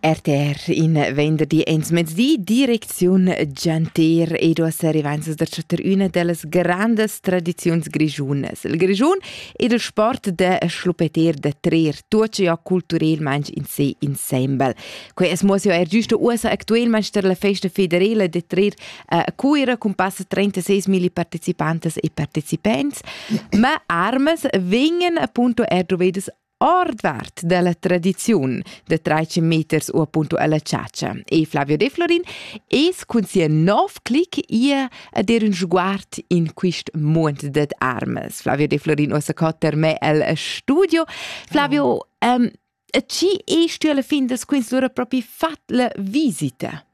RTR in venderdi ins mezdi direcziun Gianter ed uossa arrivainzas da chattar üna dellas grandas tradiziuns grigiunas, il Grischun ed il sport da schluppeter da trer tuot ja culturelmaing in se insembel. Quei es mo er giusto uossa actuelmaing tar la festa federela da trer a Cuira con passa 36.000 partecipantas e partecipants, ma armas vegnan appunto er dovedas ordvart della tradiziun de traici meters u appunto alla ciacia. E Flavio De Florin es cun sia nov clic ia a der un sguard in quist munt det armes. Flavio De Florin ossa cotter me el studio. Flavio, um, a ci est tu alla fin des quins lura propi fat la visita?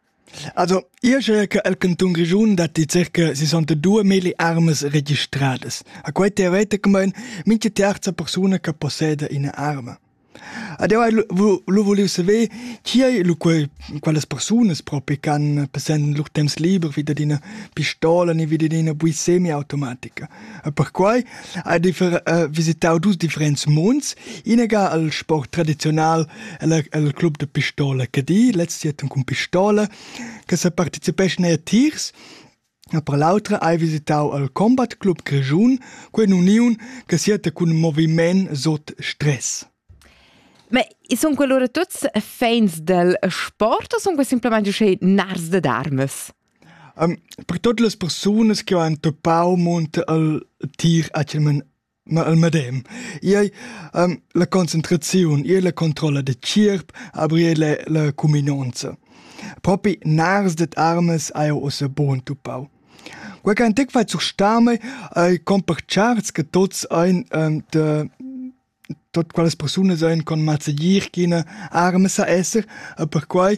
Also, io sche che el cantun Grischun datti circa sessantadue milli armas registradas. A quai teoreticamaing mincha terza persuna che posseda üna arma. Ed eu hai lu vulieu saver chi ei lu quei, qualas persunas propi ch'han passend lur temps liber vi dad üna pistola ni vi dad üna bui semiautomatica. E perquai ha visitau dus differents munds. Inaga el sport tradiziunal el, el club de pistola Cadi, lez jetton cun pistola, che se participeschan er tiers E per l'autra hai visitau al Combat Club Grischun, quella uniun che siete cun moviment sot stress. Ma sono quello tutti fans del sport o sono semplicemente narrs de darmes? Per tuot las persunas chi ho entupau munter al tir actualmaing ma al medem. I ei la concentraziun, i ei la controlla da tgierp, aber i ei la la cuminonza. Propi nars dad armas haiu ussa buca entupau. Quei ch'ha antic fait surstame ei compartscharts che tuots ein da tot qualas persunas ein con mazzegier ch'ina arma sa esser e perquai